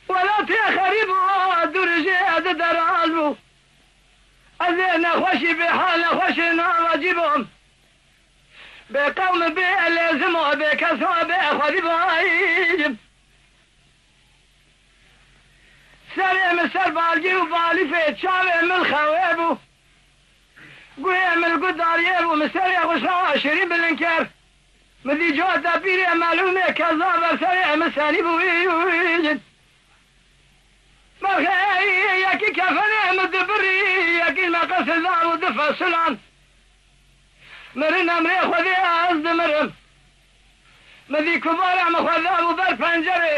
Welatê xerîb û dûrijê di deraz bû. Ez ê nexweşî bê hal nexweşê nava cî bom. Bê qewm û bê elê zim û bê kes û bê xwedî bajim. Serê min ser balgî û balîfê çavê min xewê bû. Guhê Emel Gut darîyê bû min serê xwe şawa şirîn bilind kir. Min dît cota pîrê Emel û mê Kezan ber serê Emel senî bûyîn. Berxê erî yekî kefenê Emel di birî yekîn meqesê dabû di fesulan. Mirin emrê Xwedê ez dimirim. Min dît ku bara min xwe dabû ber pencerê.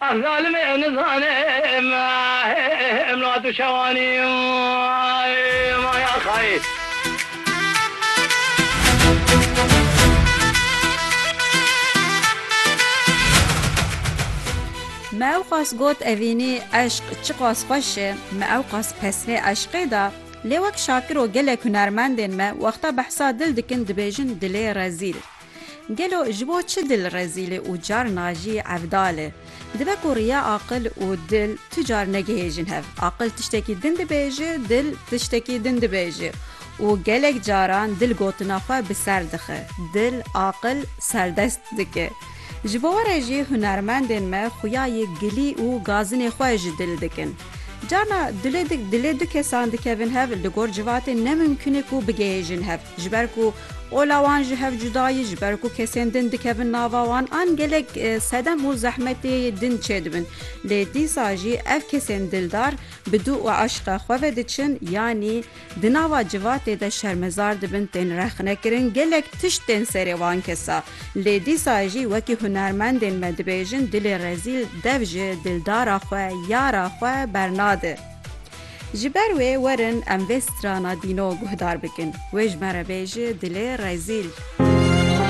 Ev zalimê em nizane me em la tu şewanî maya xayê. Me ewqas got evînî eşq çiqas xweş e, me ewqas pesnê eşqê da, lê wek Şakiro gelek hunermendên me wexta behsa dil dikin dibêjin dilê rezîl. Gelo ji bo çi dil rezîlê û carna jî evdal e? Dibe ku riya aqil û dil tu car negihêjin hev. Aqil tiştekî din dibêje, dil tiştekî din dibêje û gelek caran dil gotina xwe bi ser dixe, dil aqil serdest dike. Ji bo were jî hunermendên me xuya yê gilî û gazinê xwe ji dil dikin. Carna dilê dilê du kesan dikevin hev li gor civatê ne mumkin e ku bigihêjin hev. Ji ber ku ola wan ji hev cuda ye, ji ber ku kesên din dikevin nava wan an gelek sedem û zehmetê din çêdibin. Lê dîsa jî ev kesên dildar bi dû û eşqe xwe ve diçin yanî di nava civatê de şermezar dibin, tên rexnekirin, gelek tişt tên serê wan kesa. Lê dîsa jî wekî hunermendên me dibêjin dilê rezîl dev ji dildara xwe, yara xwe bernade. Ji ber wê werin em vê strana dîno guhdar bikin. Wê ji me re bêje dilê rezîl.